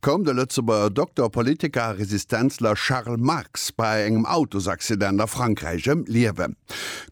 koum de Lëtzebuerger Dokter, Politiker a Resistenzler Charles Marx bei engem Autosaccident a Frankräich ëm d'Liewen.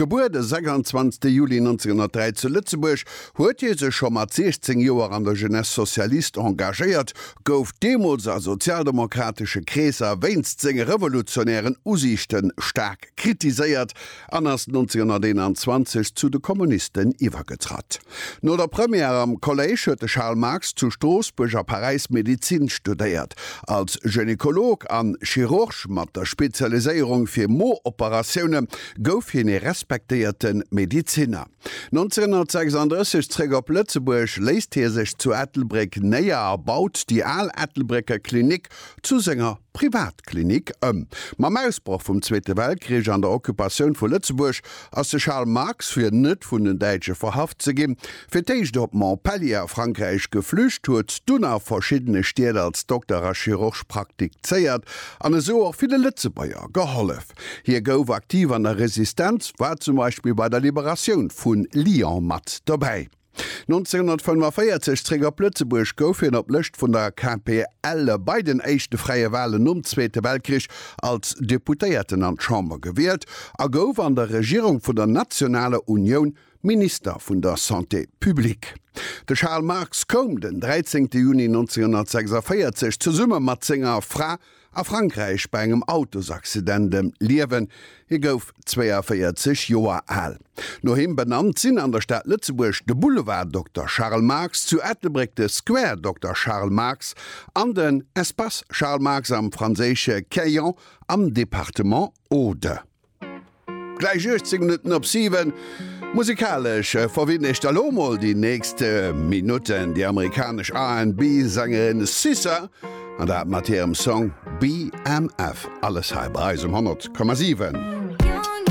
Gebuer de 26 Juli 1903 zu Lëtzebuerg, huet hie sech scho mat 16 Joer an der Jeunesse socialiste engagéiert, gouf deemools a sozialdemokratesche Kreesser wéinst senge revolutionären Usiichte staark kritiséiert, an ass 1921 zu de Kommunisten iwwergetratt. No der Première am Kolléisch huet de Charles Marx zu Stroossbuerg a Paräis Medezin studéiert. Als Gynekolog an Chirurg mat der Spezialiséierung fir Mo-Operatioune gouf hien ee respektéierte Medezinner. 1936 zréck op Lëtzebuerg, léisst hie sech zu Ettelbréck néier a baut déi al Ettelbrécker Klinik zu senger Privatklinik ëm. Mam Ausbroch vum Zweete Weltkrich an der Occupatioun vu Lëtzebuerg ass de Charles Marx, fir net vun den Däitsche verhaft ze ginn, fir d'éischt op Montpellier a Frankräich geflücht, huet dunn a verschiddene Stied als Dokter a Chirurg praktikzéiert an esou och ville Lëtzebuerger gehollef. Hie gouf aktiv an der Resistenz, war zum Beispill bei der Liberatioun vu Lyon mat dobäi. 1945 zréck op Lëtzebuerg, gouf hien op Lëscht vun der KPL bei den éischte fräie Walen nom Zweete Weltkrich als Deputéierten an d'Chamber gewielt a gouf an der Regierung vun der Nationaler Unioun Minister vun der Santé publique. De Charles Marx koum den 13 Juni 1946 zesumme mat senger Fra A Frankräich bei engem Autosaccident ëm d'Liewen. Hie gouf 42 Joer al. No him benannt sinn an der Stad Lëtzebuerg de Boulevard Dokter Charles Marx, zu Ettelbréck de Square Dokter Charles Marx an den Espace Charles Marx am franséische Quéant am Departement Aude. Gläich 18 Minutten op 7. Musikalesch verwinn ech da lo mol déi nächst Minutten déi amerikanesch RnB Sängerin SZA an dat mat hirem Song BMF. Alles hei bei eis um 100,7.